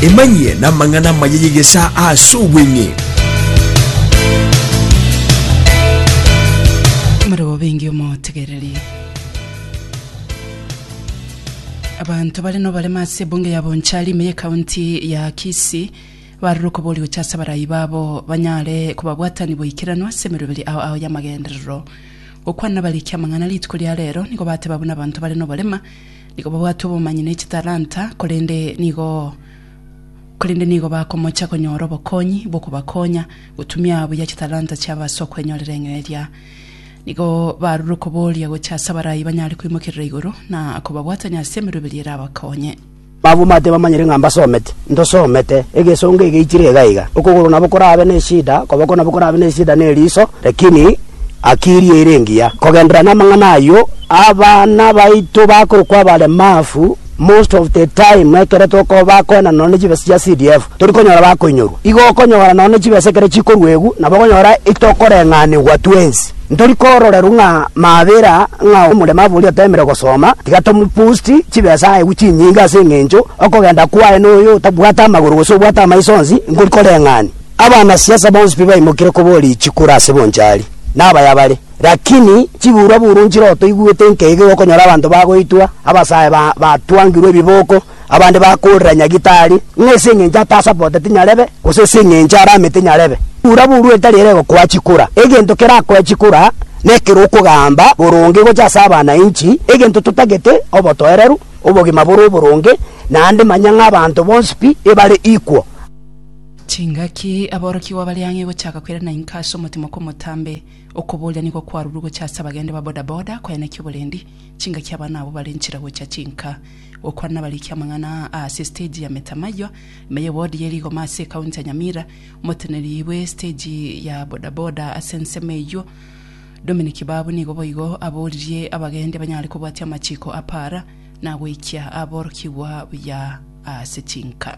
emanyie namang'ana amaya y'egesa ase obweng'e Marebo bengi omotegereri. Abanto bare nobarema ase ebunge ya Bonchari ime ye county ya Kisii Barore okoboria gochia ase abarai babo, banyare kobabwatanigwa boikeranu ase emeroberi ao ao y'amagenderero. Gokwana nabarikia amang'ana rituko ria reero nigo bateba buna abanto bare noborema, nigo babwate obomanyi ne chitalanta, korende nigo korende nigo bakomocha konyora obokonyi bw'okobakonya gotumia buya chitalanta chiabo ase okwenyorera eng'eria. Nigo barore okoboria gochia ase abarai banyare koimokerera igoro na kobabwatania ase emeroberi erabakonye. Abwo mbaate bamanyire ng'a mbasomete, ntosomete, egesongo egeichire igaiga, okogoro nabo korabe neshida, okoboko nabo korabe neshida ne eriso, lakini akiri eire engiya. Kogenderera namang'ana ayio, abana baito bakorokwa abaremafu, most of the time ekero tokoba bakoendana nonya ne chibesa chia CDF, tori konyora bakoinyorwa. Igo okonyora nonya ne chibesa ekero chikorwa egu, nabo okonyora itokoreng'anigwa twensi. Ntori kororeru ng'a mabera ng'a omorema bori otemire gosoma, tiga tomopost chibesa aegwe chinyinge ase engencho okogenda kwaye noyo otabwate amagoro gose obwate amaiso onsi nkori koreng'ani. Abana siasa bonsi pi baimokire koboria chikura ase bonchari, na abaya bare. Rakini chiburwa buru nchire otoigwete nkeiga iga okonyora abanto bagoitwa, abasae batwangirwe ebiboko, Abande bakoorera Nyagitari, ng'a ase engencho atasapota tinyarebe, gose ase engencho arame tinyarebe. Bura buru etari ere egokoa chikura. Egento kerakoe chikura nekero okogamba boronge gocha ase abanainchi, egento totagete, obotoereru, obogima bore oboronge, naende manya ng'a abanto bonsi pi ebare equal. Chingaki aborokigwa bare ang'e gochaka koirana inka ase omotimo kw'omotambe, okoboria nigo kwarurwe gocha ase abagende ba bodaboda koenekia oborendi, chingaki abana abwo bare nchire gocha chinka. Gokwana nabariki amang'ana aa ase estage ya Metamayo, ime y'ewodi ye rigoma ase ekaunti ya Nyamira. Omoteneri bwe estage ya bodaboda ase ensemo eyio, Dominic Kibabu nigo boigo aboririe abagendi abanyare kobwatia amachiko a para na goikia aborokigwa buya ase chinka.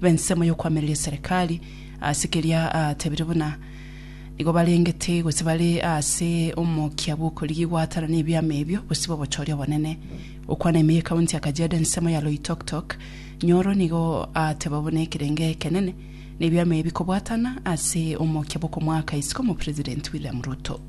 b'ensemo y'okoamereria eserekari, ase keria atebirie buna nigo barengete gose bare ase omokia bw'okorigigwa atana nebiama ebio gose b'obochori obonene. Okwana ime y'ekaunti ya Kajiado ensemo ya Loitoktok Nyoro nigo ateba buna ekerenge ekenene nebiama ebi kobwatana ase omokia bw'okomoaka isiko Omopresidenti William Ruto.